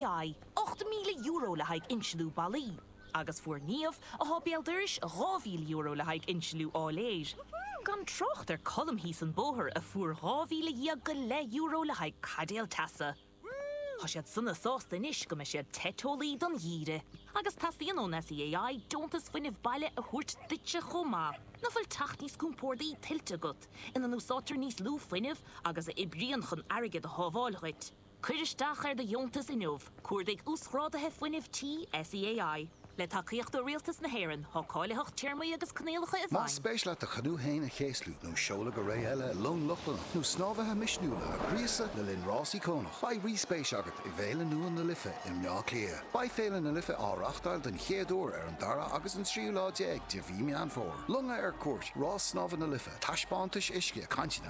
Bhí €8,000 le haghaidh insliú ballaí agus fuair Niamh, atá béal dorais, €2,000 le haghaidh insliú áiléir. Gan trácht ar Colm thíos an bóthair a fuair dhá mhíle dhéag go leith euro le haghaidh caidéal teasa. Tá siad sona sásta anois go mbeidh siad te teolaí don gheimhreadh. Agus teastaíonn ón SEAI deontas fuinnimh baile a thabhairt duitse chomh maith. Nach bhfuil teach níos compórdaí tuillte agat, ina n-úsáidtear níos lú fuinnimh agus a oibríonn chun airgead a shábháil dhuit? Cuir isteach ar do dheontas inniu, cuardaigh Uasghráduithe Fuinnimh Tí SEAI. Le tacaíocht ó Rialtas na hÉireann, tá cáilitheacht téarmaí agus coinníollacha i bhfeidhm. Más spéis leat do chanú féin a chéaslú, nó seoladh go réidh i long Lochlannach, nó snámhaithe misniúla a ghríosadh le linn rásaí cáiliúla, beidh rí-spéis agat i bhFéile nua na Life i mBleá Cliath. Beidh Féile na Life á reáchtáil den chéad uair ar an dara agus an tríú lá déag de mhí Meán Fómhair. Longa ar cuairt, rás snámha na Life, taispeántais uisce, cainteanna.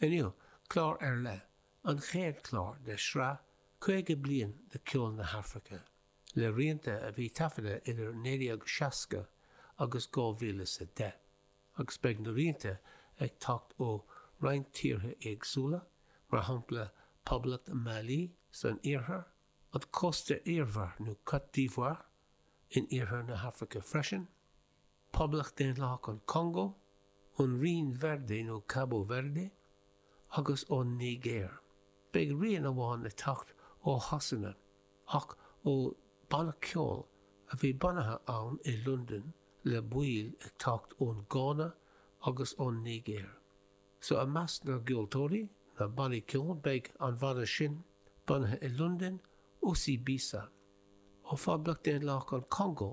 Inniu, clár ar leith, an chéad chlár de shraith 50 bliain de Cheol na hAfraice, le rianta a bhí taifeadta idir 1960 agus 2010, agus beidh na rianta ag teacht ó roinnt tíortha éagsúla, mar shampla Poblacht Mali san iarthar, an Cósta Eabhair nó Cote d'Ivoire in iarthar na hAfraice freisin, Poblacht Daonlathach an Chongó, ón Rinn Verde nó Cabo Verde, agus ón Nigéir. Beidh rian amháin ag teacht ó Shasana, ach ó bhanna ceoil a bhí bunaithe ann i Londain le baill ag teacht ón Ghana agus ón Nigéir. So i measc na gceoltóirí, na bannaí ceoil, beidh an bhanna sin bunaithe i Londain, Osibisa, ó Phoblacht Daonlathach an Chongó,